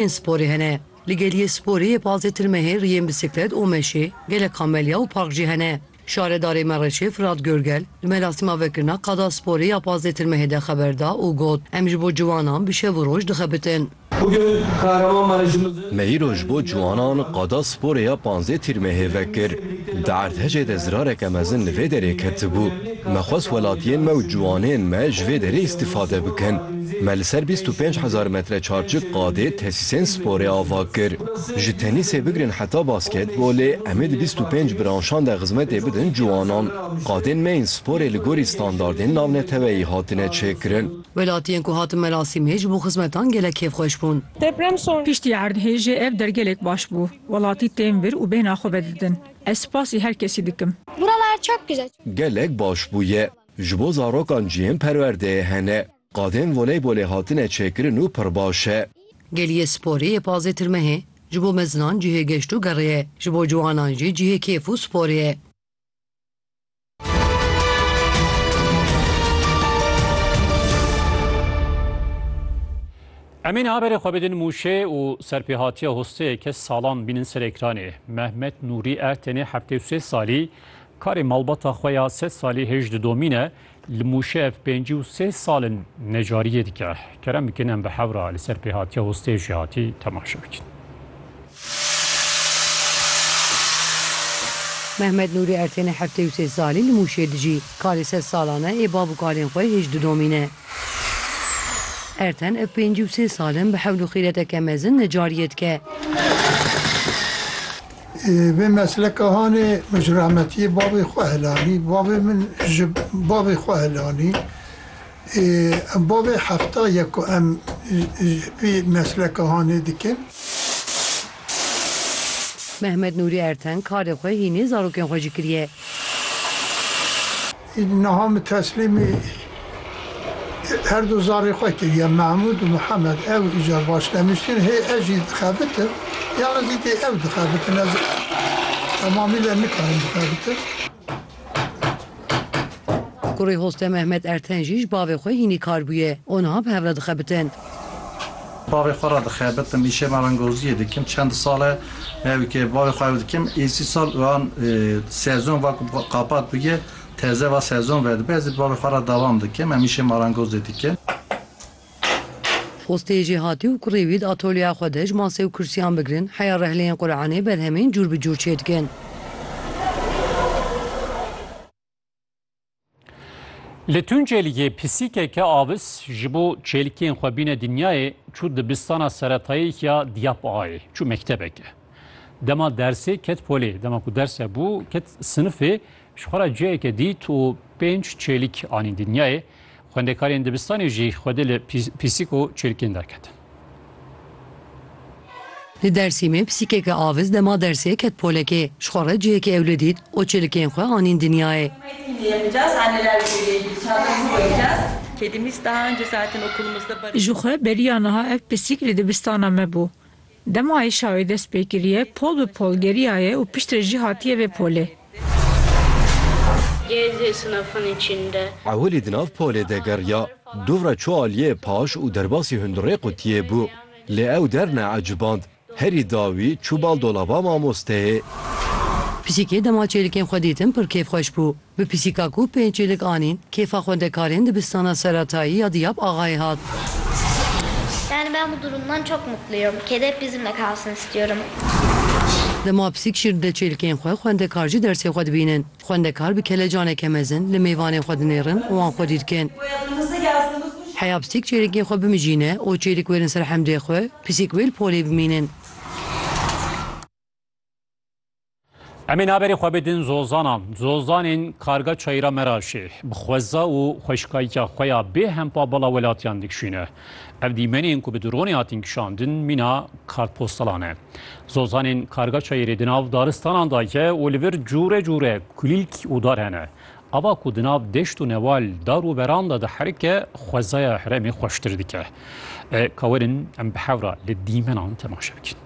Yên sporê hene. Li geliyê sporê yê Pazê Tirmehê riyên bisiklet û meşê, gelek kamelya û park jî hene. Şaredarê Mereşê Firat Görgel li merasîma vekirina Qada Sporê ya Pazê Tirmehê de xeber da û got, Em ji bo ciwanan bi şev û roj dixebitin. Me îro ji bo ciwanan Qada Sporê ya Panzê Tirmehê vekir. Di erdhejê de zirareke mezin li vê derê ketibû. Me xwest welatiyên me û ciwanên me ji vê derê îstîfade bikin. Me li ser bîst û pênc hezar metre çarçik qadê tesîsên sporê ava kir. Ji tenîsê bigirin heta basketbolê em ê di bîst û pênc branşan de xizmetê bidin ciwanan. Qadên me yên sporê li gorî standardên navneteweyî hatine çêkirin. Welatiyên ku hatin merasîmê ji bo xizmetan gelek kêfxweş bûn. Piştî erdhêjê ev der gelek baş bû. Welatî tên vir û bêhna xwe vedidin. Ez spasî her kesî dikim. Buralar çok güzel. Gelek baş bûye. Ji bo zarokan cihên perwerdeyê hene. Qadên voleybolê hatine çêkirin û pir baş e. Geliyê sporê yê pazê tirmehê. Ji bo mezinan cihê geşt û gerê ye. Ji bo ciwanan jî cihê kêf û sporê ye. Em ê niha berê xwe bidin Mûşê û serpêhatiya hosteyê ke salan bînin ser ekranê. Mehmet Nûrî e tenê heftê û sê salî, karê malbata xwe ya sed salî hêj didomîn e. Li Mûşê ev pêncî û sê sal in necariyê dike. Kerem bikin em bi hewra li ser pêhatiya hosteyê jî hatî temaşe bikin. Mehmet Nûrî Ertênê heftê û sê salî li Mûşê dijî. Kalê sed salan e ê bav û kalên xwe hêj didomîne. Erten ev pêncî û sê sal in bi hewl û xîreteke mezin necariyê dike. Vê mesleka hanê min ji rahmetiyê bavê xwe helanî. Bavê min ji bavê xwe helanî. Em bo vê hefta ye ku em ji vî mesleka hanê dikin. Mehmet Nûrî Erteng karê xwe hînî zarokên xwe jî kiriye. Îdî niha min teslîmî her du zarê xwe kiriye Mehmûd û Mihemed. Ew îcar baş demiştin. Hê ez jî dixebitim yan zî dê ew dixebitin. Ez temamîle nikarim bixebitim. Kurê Hoste Mehmet Erten jî ji bavê xwe hînî kar bûye û niha bi hev re dixebitin. Bavê xwe re dixebitim, îşê me rengoziyê dikim. Çend sal e ew ke bavê xwe ew dikim. Êsî sal wan sezon va ku qapat bûye teze va sezon vedibe. Ez ê bavê xwe re devam dikim. Em îşê marengozê dikin. Xwestê jê hatî û kurê wî di atolyeya xwe de ji masê û kursîyan bigirin heya rehleyên Quranê berhemên cûr bi cûr çê dikin. Li Tuncêliyê pisîkeke avis ji bo çêlikên xwe bîne dinyayê çû dibistana seretayî ya Diyap Ağayê. Çû mektebeke. Dema dersê ket polê. Dema ku ders hebû ket sinifê Ji xwe re ciheke dît û pênc çêlik anîn dinyayê. Xwendekarên dibistanê jî xwedê li pîsik û çêlikên derketin. Li Dersîmê pîsîkeke avis dema dersê ket polekê. Ji xwe re ciheke ewle dît û çêlikên xwe anîn dinyayê. Ji xwe beriya niha ev pîsîk li dibistana me bû. Dema êşa wê dest pê kiriye, pol bi pol geriyaye û piştre jî hatiye vê polê. Ewilî di nav polê de geriya, dûvra çû aliyê paş û derbasî hundirê qutiyê bû. Lê ew der neeciband, herî dawî çû bal dolaba mamosteyê. Pisîkê dema çêlikên xwe dîtin pir kêfxweş bû. Bi pisîka ku pênc çêlik anîn, kêfa xwendekarên dibistana seratayî ya Diyab Axayê hat. Yani ben bu durumdan çok mutluyum. Kedi hep bizimle kalsın istiyorum. Dema pisîk şîr dide çêlikên xwe, xwendekar jî dersê xwe dibînin. Xwendekar bi kelecaneke mezin li mêvanên xwe dinêrin û wan xwedî dikin. Heya pisîk çêlikên xwe bimijîne û çêlik wêrin ser hemdê xwe, pisîk wê li polê bimînin. Em ê naberê xwe bidin zozanan. Zozanên karga çayîra me ra jî bi xweza û xweşikayîka xwe ya bê hempa bala welatiyan dikişîne. Ev dîmenên ku bi dronê hatin kişandin mîna kartpostalan e. Zozanên karga çayîrê di nav daristanan de ye û li vir cûre cûre kulîlk û dar hene. Ava ku di nav deşt û newal dar û beran de diherike xwezaya herêmê xweştir dike. Kawerin em bi hevra li dîmenan temaşe bikin.